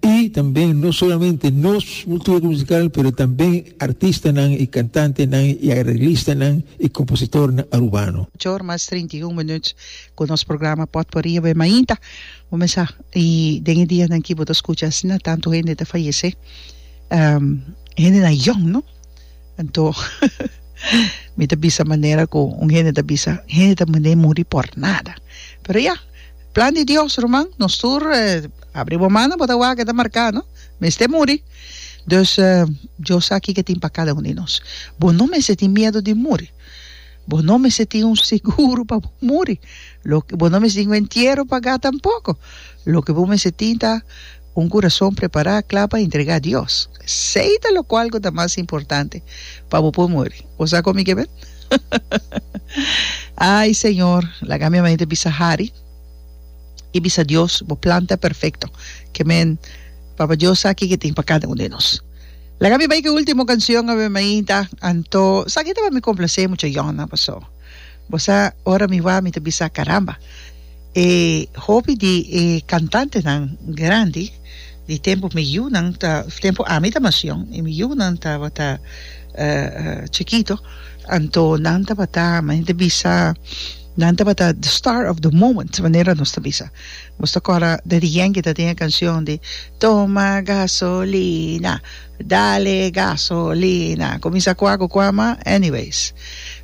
Y tambe no solamente nos cultura musical pero tambe artistanan y cantantenan y arreglistanan y compositornan Arubano. Ocho or mas trinta i un minuut cu nos programa Potpourri a bay mainta. Bo me sa y den e dianan aki bo ta scucha asina tanto hende ta fayece. Hendenan yong no. Anto, mi ta bisa manera ku un hende ta bisa, un hende ta mende muri por nada. Pero ya, plan di Dios, ruman. Nos tur, abri bo mano, bo ta wak, e ta marká, no? Mester muri. Dus, Dios sa kiko e tin pa kada un di nos. Bo no mester tin miedu di muri. Bo no mester tin un seguro pa bo muri. Lo, bo no mester tin un entiero pagá tampoko. Loke bo mester tin ta. Un kurason prepará kla pa entregá Dios. Sei ta lokual ku ta mas importante pa bo por muri. Bo sa kon mi ke men? Ai, Señor, laga mi amanente bisa hari i bisa Dios, bo plan ta perfekto. Ke men, Papa Dios sa ke ke tin pa kada un den nos. Laga mi bai ku e último kansion, a mi mainta, anto sa ke ta pa mi komplasé mucha yònnan pasó. Bo sa, ora mi wak mi ta bisa, Caramba, e hopi di e cantantenan grandi di tempu mi yunan, tempu ami ta macion y mi yunan tabata chikito, anto nan tabata, mi hinter bisa, nan tabata the star of the moment, manera nos ta bisa. Nos ta kora Daddy Yankee ta tin e cancion di Toma gasolina. Dale gaso lina. Cominsa cua cu cua ma anyways.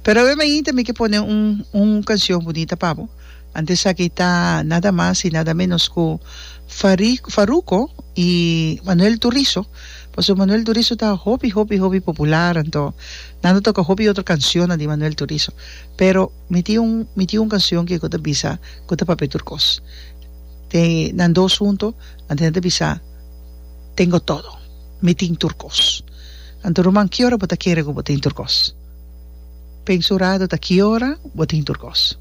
Pero awe mi inte mi ke pone un un cancion bunita pa bo. Ante esaki ta nada mas y nada menos cu Fari Farruko y Manuel Turizo. Pasobra Manuel Turizo ta hopi hopi hopi popular anto nan ta toca hopi otro cancionnan di Manuel Turizo. Pero mi tin un mi tin un cancion ke ku ta bisa ku ta papia tur kos. Te nan dos hunto ante nan ta bisa. tengo todo, mi tin tur kos. Anto ruman kiora bo ta kere ku bo tin tur kos? Pensa un ratu ta kiora bo tin tur kos.